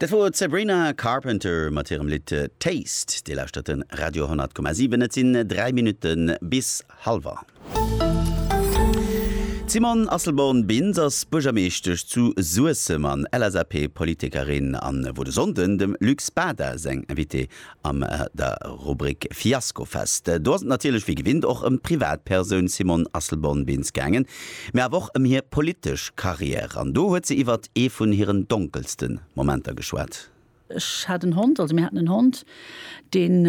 Dat wor d'Sabrina Carpenter mat hirem Lidd Taste. Dir lauschtert de Radio 10,7. Et sinn 3 Minutte bis hallwer. D'Simone Asselborn-Bintz ass Buergermeeschtesch zu Suessem an LSAP-Politikerin an wor de Sonnden dem Luc Spada säin Invité Am der Rubrik Fiaskofest, do ass et natierlech wéi gewinnt och ëm d'Privatpersoun Simone Asselborn-Bintz gaangen, mee awer och ëm hir politesch Carrière. An do huet se iwwert ee vun hiren donkelste Momenter geschwat. Ech hat en Hond, also mir haten en Hond, deen,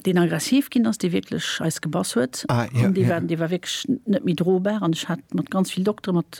deen aggressiv ginn ass, dee wierklech eis gebass huet. An dee war, dee war wierklech net méi drobar. An ech hat mat ganz vill Doktere, mat.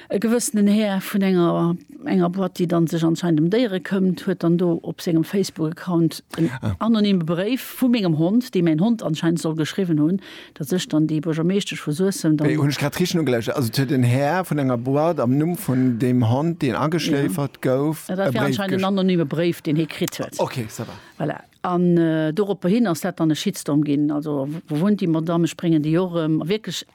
E gewëssenen Här vun enger enger Boîte, déi dann sech anscheinend em Déiere këmmt, huet dann do op sengem Facebook-Account en anonyme Bréif vu mengem Hond, dee mäin Hond anscheinend soll geschriwwen hunn, datt ech dann déi Buergermeeschtesch vu Suessem dann. Hunn ech grad richteg nogelauschtert? Also et huet en Här vun enger Boîte am Numm vun deem Hond, deen ageschléifert gouf, e Bréif geschriwwen? Dat war anscheinend en anonyme Bréif, deen hie kritt huet. Okay, ça va. Voilà. An doropperhin ass dat dann e Shitstorm ginn, also wou wunnt déi Madamm, ech bréngen déi och erëm, a wierklech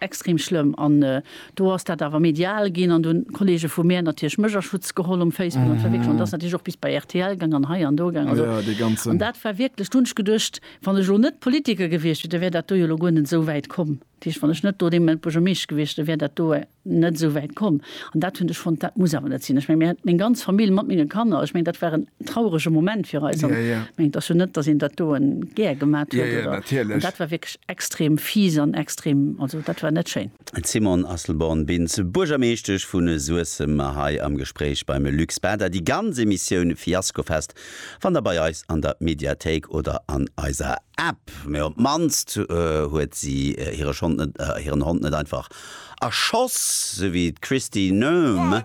extrem schlëmm. An do ass dat awer medial ginn an do hunn d'Kolleege vu mär natierlech mech a Schutz geholl um Facebook, an et war wierklech, an et ass natierlech och bis bei rtl gaang an hei an do gaang, also an dat war wierklech, do hunn ech geduecht, wann ech elo net Politiker gewiescht wier, da wär dat do jo elo guer net esou wäit komm, dat heescht, wann ech net do dee Moment Buergermeeschter gewiescht, da wär dat do. net esou wäit komm an dat hunn ech fonnt, dat muss awer net sinn. Ech meng, mir hat meng ganz Famill mat menge Kanner, ech meng, dat war en traurege Moment fir eis. Ech meng, et ass jo net, datt een dat doen gär gemat huet oder. Dat war wierklech extrem fies an extrem, also dat war net schéin. D'Simone Asselborn-Bintz, Buergermeeschtesch vu Suessem, hei am Gespréich beim Luc Spada. Déi ganz Emissioun Fiaskofest Fannt der bei eis an der Mediathéik oder an eiser App. Mee op d'mannst huet si hire Schond net, hiren Hond net einfach erschoss, sou wéi d'Kristi Noem.